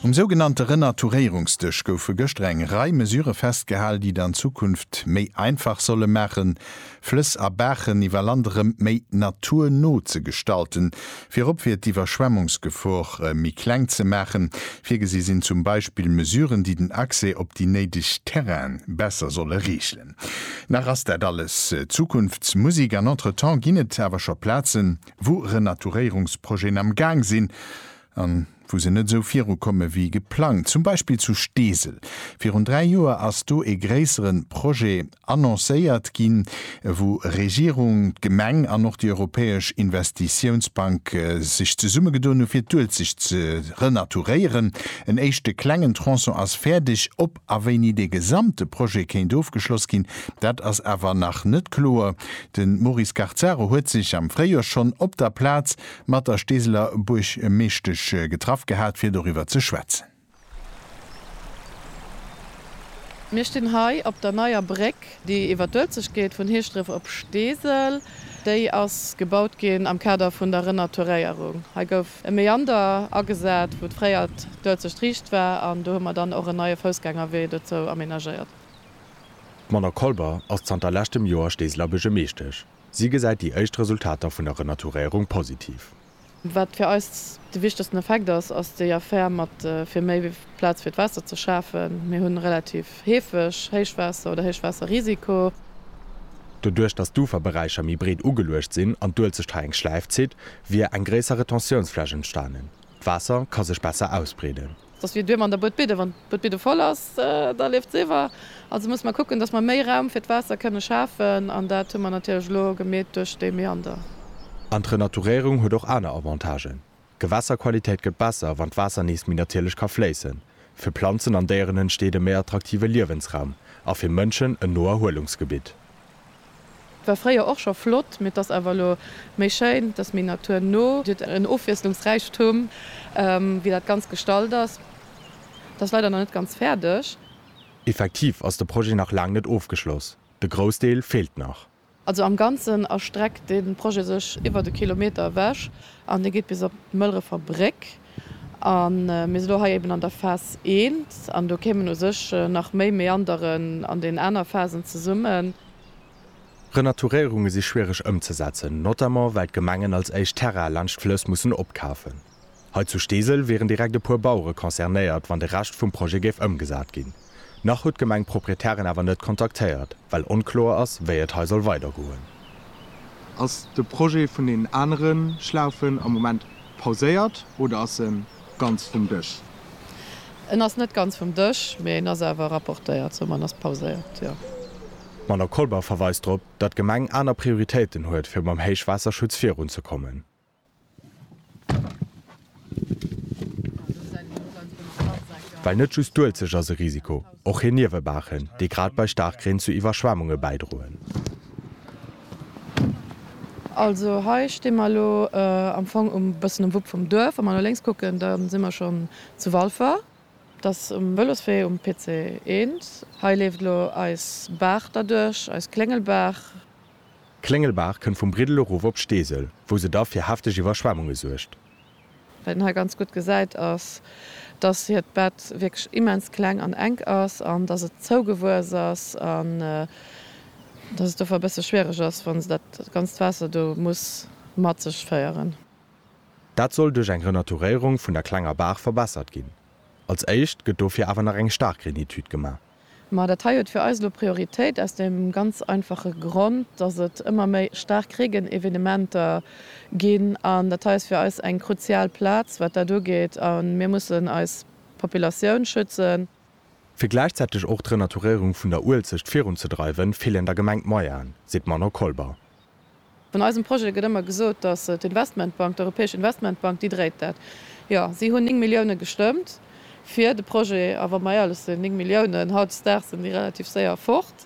Um sougenannte Renaturéierungsdësch goufe gëschter eng Rei Mesure festgehal, déi et an Zukunft méi einfach solle maachen, Flëss a Baachen iwwer Land erëm méi naturno ze gestalten. Virop fir d'Iwwerschwemmungsgefor méi kleng ze maachen. Virgesi sinn zum Beispill Mesuren, déi den Accès op déi néideg Terraine besser solle reegelen. Nach ass dat alles Zukunftsmusik an entretemps ginn et awer scho Plazen, wou Renaturéierungsprojeten am Gaang sinn a wou se net esou virukomme wéi geplangt, zum Beispill zu Steesel. Virun dräi Joer ass do e gréissere Projet annoncéiert ginn, wou Regierung, d'Gemeng an och déi Europäesch Investitiounsbank sech zesummegedoen hu fir d'Uelzecht ze renaturéieren. En éischte klengen Tronçon ass fäerdeg, op A wéini dee gesamte Projet kéint ofgeschloss ginn, dat ass awer nach net kloer. De Maurice Garzaro huet sech am Fréijoer schonn op der Plaz mat der Steeseler Buergmeeschtesch getraff gehat, fir doriwwer ze schwätzen. Mir stinn hei op der neier Bréck, déi iwwer d'Uelzecht geet, vun Heeschdref op Steesel. Déi ass gebaut ginn am Kader vun der Renaturéierung. e Meander agesat, wou d'fréiert d'Uelzecht Striicht war, an do hu mer dann och en neie Foussgängerwee dozou amenagéiert. D'Mona Kolber ass zanter leschtem Joer Steeseler Buergermeeschtesch. Si gesäit déi éischt Resultater vun der Renaturéierung positiv. Wat fir eis de wichtegsten Effekt ass, ass déi Affär mat fir méi Plaz fir d'Waasser ze schafen. Mir hu relativ heefeg Héichwaasser oder Héichwaasserrisiko. Doduerch, datt d'Uferberäicher méi breet ugeluecht sinn an d'Uelzecht hei eng Schläif zitt, wier eng gréisser Retentiounsfläch entstanen, d'Waasser ka sech besser ausbreeden. Soss wier duerm an der Boetbidde, wann d'Boetbidde voll ass, da leeft se iwwer. Also musse mer kucken, datt mer méi Raum fir d'Waasser kënne schafen an dat hu mer natierlech elo gemeet duerch dee Meander. An d'Renaturéierung huet och aner Avantagen, d'Gewässerqualitéit gëtt besser, wann d'Waasser nees méi natierlech ka fléissen. Fir Planzen an Déieren entsteet e méi attraktive Liewensraum a fir Mënschen en Noerhuelungsgebitt. War fréier och scho flott, mee 't ass awer elo méi schéin, 't ass méi naturno, 't huet en Ofwiesslungsräichtum, wéi dat Ganzt gestalt ass. 't ass leider nach net ganz fäerdeg. Effektiv ass de Projet nach laang net ofgeschloss, de Groussdeel feelt nach. Also am Ganzen erstreckt de Projet sech iwwert e Kilometer ewech an dee geet bis op d'Mëlrefer Bréck. A mir si lo hei eben an der Phas I an do kéimen u sech nach méi Meanderen an den aner Phasen zesummen. Renaturéierunge si schwiereg ëmzesetzen, notamment well d'Gemengen als éischt Terraine laanscht d'Flëss mussen opkafen. Hei zu Steesel wieren direkt e puer Bauere concernéiert, wann de Rescht vum Projet géif ëmgesat ginn. Nach huet d'Gemeng d'Proprietären awer net kontaktéiert, well onkloer ass, wéi et hei soll weidergoen. Ass de Projet vun deenen anere Schlaufen am Moment pauséiert oder ass e ganz vum Dësch? En ass net ganz vum Dësch, mee en ass awer rapportéiert, soman ass pauséiert, jo. D'Madamm Kolber verweist drop, datt d'Gemeng aner Prioritéiten huet, fir mam Héichwaasserschutz virunzekommen. Well net just d'Uelzecht ass e Risiko, och hir Niewebaachen, déi grad bei Staarkreen zu Iwwerschwemmunge bäidroen. Also hei sti mer elo am Fong e bëssen um Wupp vum Duerf. Wa mer no lénks kucken, da si mer schonn zu Walfer. Dat ass um Vëloswee um PC 1. Hei leeft elo eis Baach derduerch, eis Kléngelbaach. D'Kléngelbaach kënnt vum Briddel erof op d'Steesel, wou se da fir hefteg Iwwerschwemmunge suergt. Wat een hei ganz gutt gesäit ass, dass hiert Bett wierklech immens kleng an enk ass an dass et zougewuess ass an dass et dofir e bësse schwiereg ass, wa se dat ganzt Waasser do muss mat sech féieren. Dat soll duerch eng Renaturéierung vun der klenger Baach verbessert ginn. Als éischt gëtt dofir awer nach eng Staarkgrenitude gemaach. Ma dat hei huet fir eis elo Prioritéit, aus deem ganz einfache Grond, dass et ëmmer méi staark Regenevenementer ginn. An dat hei ass fir eis eng kruzial Plaz, wat dat ugeet. A mir mussen eis Populatioun schützen. Fir gläichzäiteg och d'Renaturéierung vun der Uelzecht virunzedreiwen, feelen der Gemeng d'Moyenen, seet d'Manon Kolber. Vun eisem Projet gëtt ëmmer gesot, datt d'Investmentbank, d'Europäesch Investmentbank, déi dréit dat. Jo, si hunn 9 Milliounen gestëmmt fir de Projet. A wa mer éierlech sinn, 9 Milliounen hautdesdaags sinn déi relativ séier fort.